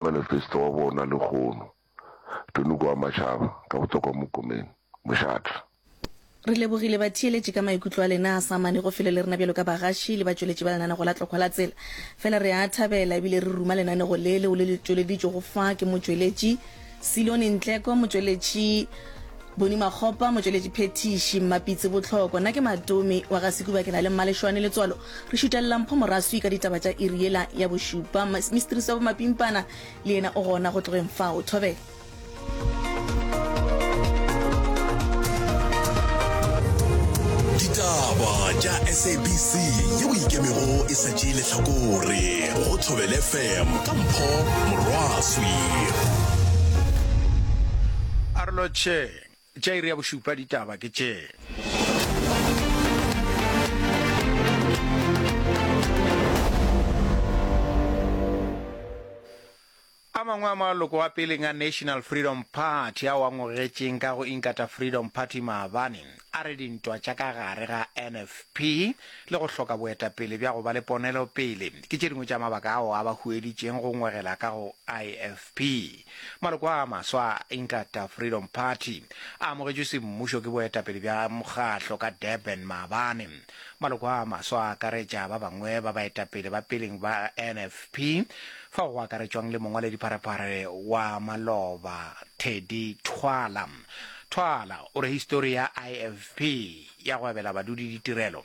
Manifesto wa bona lehono. Tony Koamatšhaba, ka botokwa Mokomeng, Mošatla. Re lebogile batheeletši ka maikutlo a lena a sa amane go felo le rena bjalo ka bagaši le batšweletši ba lenanego la Tlokgwa la Tsela. Fela re a thabela ebile re ruma lenanego le leo le le tšweleditšwego fa ke motšweletši Silone Ntleko, motšweletši Boni Makgopa, motšweletši phethiši Mmapitsi Botlhoko. Nna ke Matomi wa ga Sekuba, ke na le Mmalešwane Letswalo Re šutelela mpho moraswi ka ditaba tša iri yela ya bošupa. Mistrisi wa bomapimpana le yena o gona go tlogeng fao. Thobela. Ditaba tša SABC yeo e ikemego e sa tšee lehlakore go Thobela FM ka Mpho Morwaswi. A re lotšheng. Tša iri ya bošupa ditaba ke tše. A mangwe a maloko a peleng a National Freedom Party ao a ngogetšeng ka go Inkatha Freedom Party maabane a re dintwa tša ka gare ga NFP le go hloka boetapele bja go ba le ponelopele ke tše dingwe tša mabaka ao a ba hueditšeng go ngwegela ka go IFP. Maloko a maswa a Inkatha Freedom Party a amogetšwe semmušo ke boetapele bja mokgahlo ka Durban maabane. Maloko a maswa a akaretša ba bangwe ba baetapele ba peleng ba NFP fao go akaretšwang le mongwaledipharephare wa maloba Teddy Thwala. Thwala o re histori ya IFP ya go abela badudi ditirelo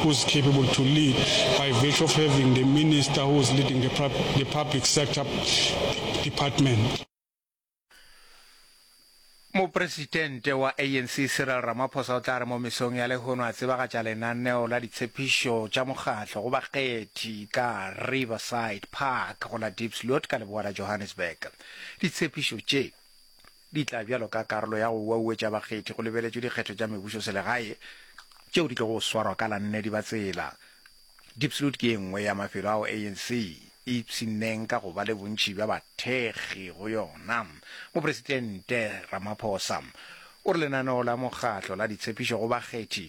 who is capable to lead by virtue of having the minister who is leading the the public sector department. Mopresitente wa ANC Cyril Ramaphosa o tla re mo mesong ya lehono a tsebagatša lenaneo la ditshepišo tša mokgatlo go bakgethi ka Riverside Park go la Diepsloot ka leboa la Johannesburg. Ditshepišo tše di tla bjalo ka karolo ya go uauetša bakgethi go lebeletšwe dikgetho tša mebušoselegae tšeo di tlogo swarwa ka la nne Dibatsela. Diepsloot ke ye nngwe ya mafelo ao ANC e ipshinneng ka go ba le bontši bja bathekgi go yona. Mopresidente Ramaphosa o re lenaneo la mokgatlo la ditshepišo go bakgethi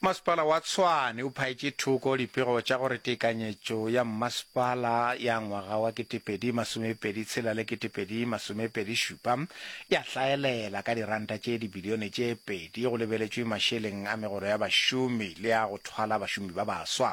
Masepala wa Tshwane o phaetše thoko dipego tša gore tekanyetšo ya mmasepala ya ngwaga wa 2026 le 2027 ya hlaelela ka diranta tše dibilione tše pedi go lebeletšwe mašeleng a megolo ya bašomi le a go thwala bašomi ba baswa.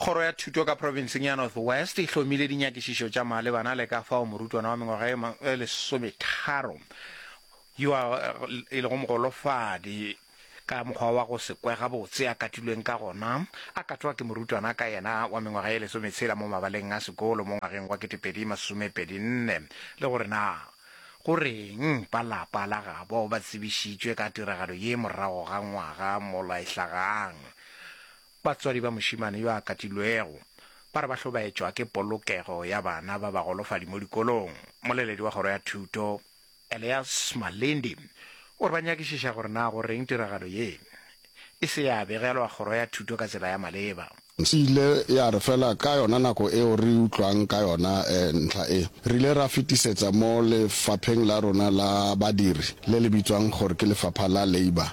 Kgoro ya Thuto ka provinseng ya North West e hlomile dinyakišišo tša malebana le ka fao morutwana wa mengwaga e ma- e lesometharo yo a e lego mogolofadi ka mokgwa wa go se kwe gabotse a katilweng ka gona a katwa ke morutwana ka yena wa mengwaga e lesometshela mo mabaleng a sekolo mo ngwageng wa 2024 le gore na go reng ba lapa la gabo ba tsebišitšwe ka tiragalo ye morago ga ngwaga molaehlagang Batswadi ba mošemane yo a katilwego ba re ba hlobaetšwa ke polokego ya bana ba bagolofadi mo dikolong. Moleledi wa Kgoro ya Thuto, Elias Malindi, o re ba nyakišiša gore na go reng tiragalo ye e se ya begelwa Kgoro ya Thuto ka tsela ya maleba. E ile ya re fela ka yona nako eo re utlwang ka yona ntlha e, re ile ra fetisetsa mo lefapheng la rona la badiri le le bitswang gore ke Lefapha la Labour.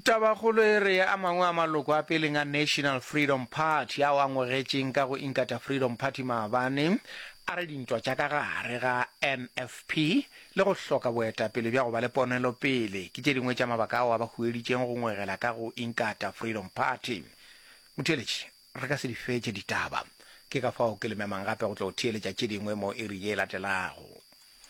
Tabakgolo e re a mangwe a maloko a peleng a National Freedom Party ao a ngogetšeng ka go Inkatha Freedom Party maabane a re dintwa tša ka gare ga NFP le go hloka boetapele bja go ba le ponelopele ke tše dingwe tša mabaka ao a ba hueditšeng go ngwegela ka go Inkatha Freedom Party. Motheeletši, re ka se di fetše ditaba. Ke ka fao ke le memang gape go tlo theeletša tše dingwe mo iri ye e latelago.